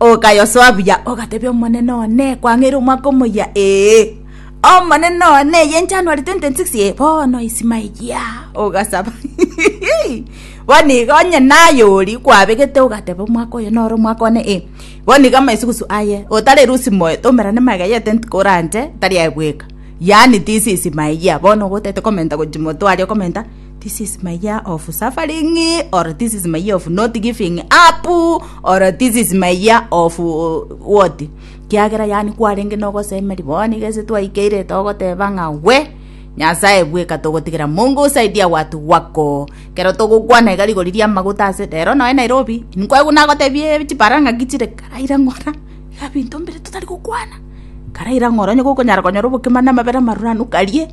Okayosoa buya, ogatebia, Omonene one, kwang'eire omwaka omoyia, ee, Omonene one, eye January 2026, ee, bono isima eyia, ogasaba bono iga onye naye ori kwabegete ogateba omwaka oyo noro omwaka one, ee, bono iga amaisugusu aye otari erusi moyo tomerane magega ya etenti koranche tari aye bweka, yaani tisi isima eyia, bono ogotaete komenta gochia motwe aria okomenta. This is my year of suffering or this is my year of not giving up or this is my year of uh, what kiagera yani kwarenge nogosemeri boni gese twaikeire togoteba ng'a we nyasaye bweka togotigera mungu usaidia watu wako kero togokwana iga rigori ria amaguta ase rero noe nairobi nkwegu nagotebie chipara ng'a gichire karaira ng'ora iga binto mbire totari gokwana karaira ng'ora onye gokonyara konyora obokima na amabere amaruranu karie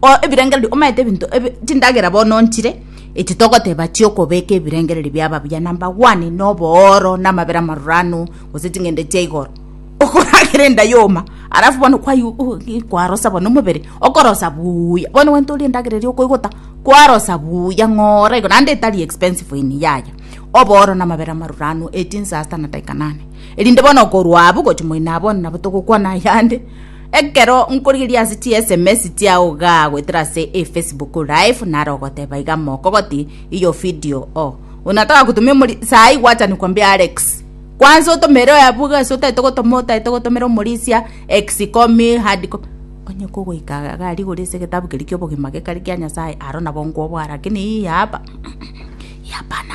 o ebirengererio omanyete ebinto ebi chindagera bono nchire echi togoteba chiokobeka ebirengererio biaba buya number one na obooro na amabera amaruranu gose ching'ende chia igoro okoragera enda yoma alafu bono kwai uh kwarosa bono omobere okorosa buuya bono gento orie endagera eria okoigota kwarosa buuya ng'ora igo naende etari expensive in yaya obooro na amabere amaruranu echi nsasta na daika nane erinde bono okorwa abwo gochia moino abwo bono nabo togokwana yande. Ekero nkorigereria ase chi sms chiao iga goetera ase e Facebook live nare ogoteba iga moko goti iyo video o unataka kutumia omori sai gwacha ni kwambia Alex kwanza otomere oyabu iga ase otaete gotoma otaete gotomera omorisia ex copy hard copy onye kogoika iga aria igoro ase egetabu keria kia obogima gekare kia Nyasaye aro nabo nkobwaa lakini hii hapa hii hapana.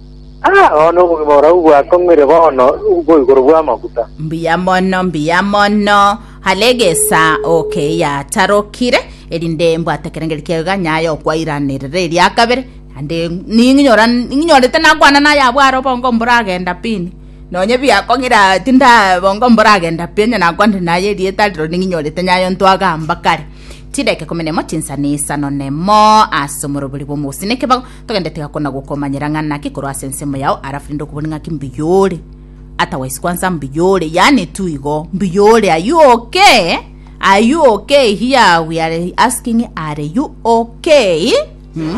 Aa, bono obogima borabu bwakong'uire bono bwo igoro bw'amaguta. Mbuya mono, mbuya mono. Hare egesa oke yatarokire, erinde mbwate ekerengeri kiaye iga nyaye okwairanirera eria kabere. Naende ning'inyora ning'inyorete nakwana naye abwo are obongo mboragenda pini. Nonye biakong'ira tinda bongo mboragenda pi onye nakwanire naye erieta riro ning'inyorete nyaye ntwagamba kare. Chidaka ikumi nemo chinsana isano nemo ase omorobori bw'omogusi nekebago Togende tigakona gokomanyera ng'a naki korwa ase ensemo yao alafu rende okoboni ng'aki mbuya ore. Otherwise kwanza mbuya ore, yaani tu igo, mbuya ore, are you okay? Are you okay here we are asking are you okay? Hmm?